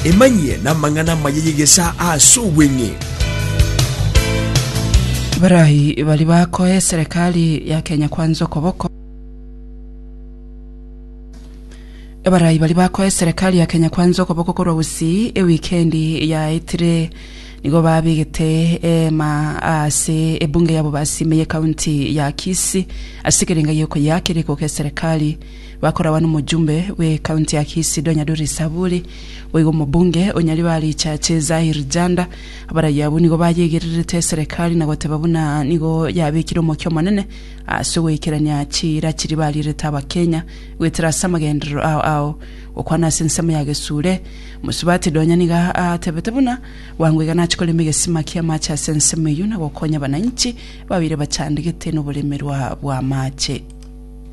Emanyie namang'ana amaya y'egesaa ase obweng'e. Barayi bari bakoe serikali ya Kenya Kwanza okoboko Barayi bari bakoe serikali ya Kenya Kwanza okoboko korwa gusii ewikendi yaetire nigo babigete ema ase ebunge ya Bobasi ime ye county ya Kisii ase ekerenga gi'okoyaka erikoka eserikali Bakoragwa nomojumbe bw'ecounty ya Kisido Nyaduri Saburi, boigo omobunge o Nyaribari Chache Zahir Janda, abarayio abwo nigo bayegererete eserekari na goteba buna nigo yabekire omokia omonene ase ogoikerania chiira chiria bariirete abakenya goetera ase amagenderero ao ao gokwana ase ensemo ya gesure Musubati Donya nigo atebete buna bwango iga nache korema egesima kia amache ase ensemo eyio na gokonya abananchi babeire bachandegete noboremerwa bw'amache.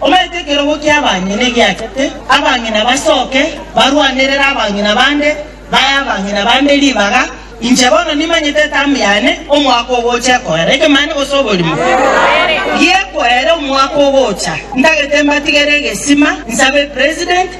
Omanyete ekerogo ki'abang'ina egiachete, abang'ina basoke, barwanerere abang'ina bande, bae abang'ina bande ribaga. Inche bono nimanyete etamu yane, omwaka ogocha ekoera ekemanye gose oborimo gi'ekoera omwaka ogocha. Ntagete mbatigere egesima, nsabe President,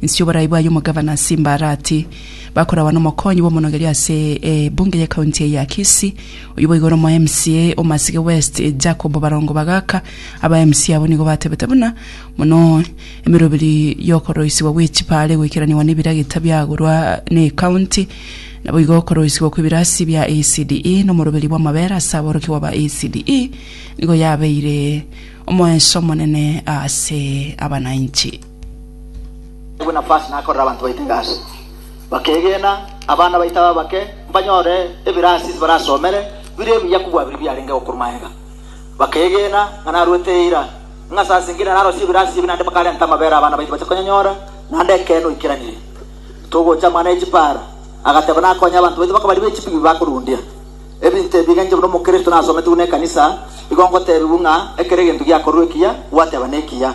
Inse y'oboraai bwaye omogavana ase Mbarati bakoragwa nomokonyi bw'omonogeri ase ebunge y'ekaunti eye ya Kisii, oyio boigo ore omo MCA o Masige West Jacob Barongo Bagaka. Aba MCA abwo nigo batebete buna mono emeroberi y'okoroisigwa gwe chipaale egoikeraniwa n'ebiragita biagorwa n'ekaunti, naboigo okoroisigwa kw'ebirasi bia ECDE nomoroberi bw'amabera ase aborokigwa ba ECDE nigo yabeire omoenso omonene ase abanainchi. Naigwe nafasi nakorere abanto baito egasi, bakeegena, abana baito abe abake, mbanyore ebirasi ase barasomere bire ebiya kobua biri biarenge gokorwa magega. Bakeegena ng'a narwete eira, ng'a ase asengire na narosie ebirasi ebi naende bakarenta amabera abana baito bache konyanyora, naende ekeene oikeranirie. Togocha amang'ana ye chipaara, agateba nakonye abanto baito bakabari be chipi bi bakorundia. Ebinto ebi egencho buna omokristo nasometigwe nekanisa, igo ngotebiwu ng'a ekero egento giakorwa ekiya, gwateba nekiya.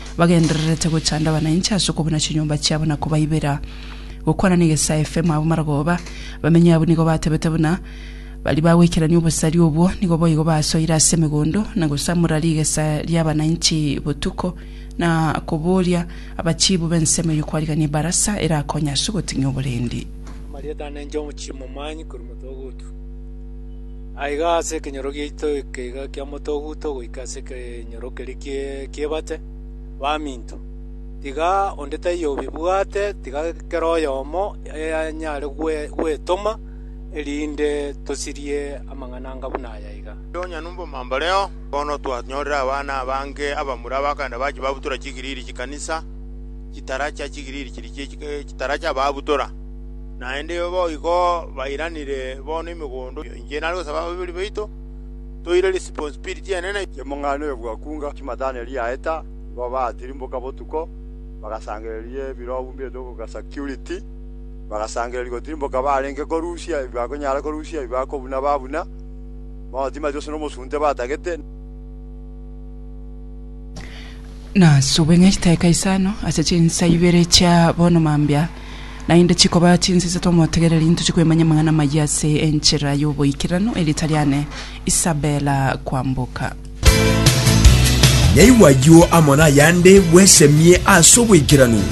bagendererete gochanda abanainche ase okobuna chinyomba chiabo na kobaibera. Gokwana negesae FM abwo maragoba. Abamenyi abwo nigo batebete buna, Baria bagweikerania obosari obwo nigo boigo basoire ase emegondo na gosamora rigesa ri'abanainchi botuko na koboria abachiibu b'ensemo eyio kwarigania ebarasa erakonye ase ogoting'ia oborendi. Amarieta ane inche omochie momanyi korwa moto ogotu. Aiga ase ekenyoro giaito ekeiga kia motoguto goika ase ekenyoro keria ki'ebate, baminto, tiga onde taiyo obibwate, tiga kera oyomo anyare gwetoma, erinde tosirie amang'ana anga buna aya iga. Ase onye nobomambareo bono twanyorire abana abange abamura abakenda bachia babutora chigiriri chi'ekanisa, chitara chia chigiriri chiria chie chitara chi'ababutora. Naende boigo bairanire bono emegondo inche nare gosaba ababori baito, toire responsibility enene. Chimong'ana oyo bwakunga chimatane riaeta, igo baatirimboka botuko, bagasangereria ebirobu mbiaito goka security, bagasangereria gotirimboka barenge korusia ebi bakonyara korusia, ebi bakobuna babuna, bono timanyeti gose nomosunte batagete. Nasube ng'a chitaika isano ase chinsa ibere chia bono mambia naende chikoba chinsa isato omotegereri intoche kwemanya amang'ana amayia ase enchera y'oboikeranu, erieta riane Isabella Kwamboka. Naigwa ayio amo nayande bwesemie ase oboikeranu.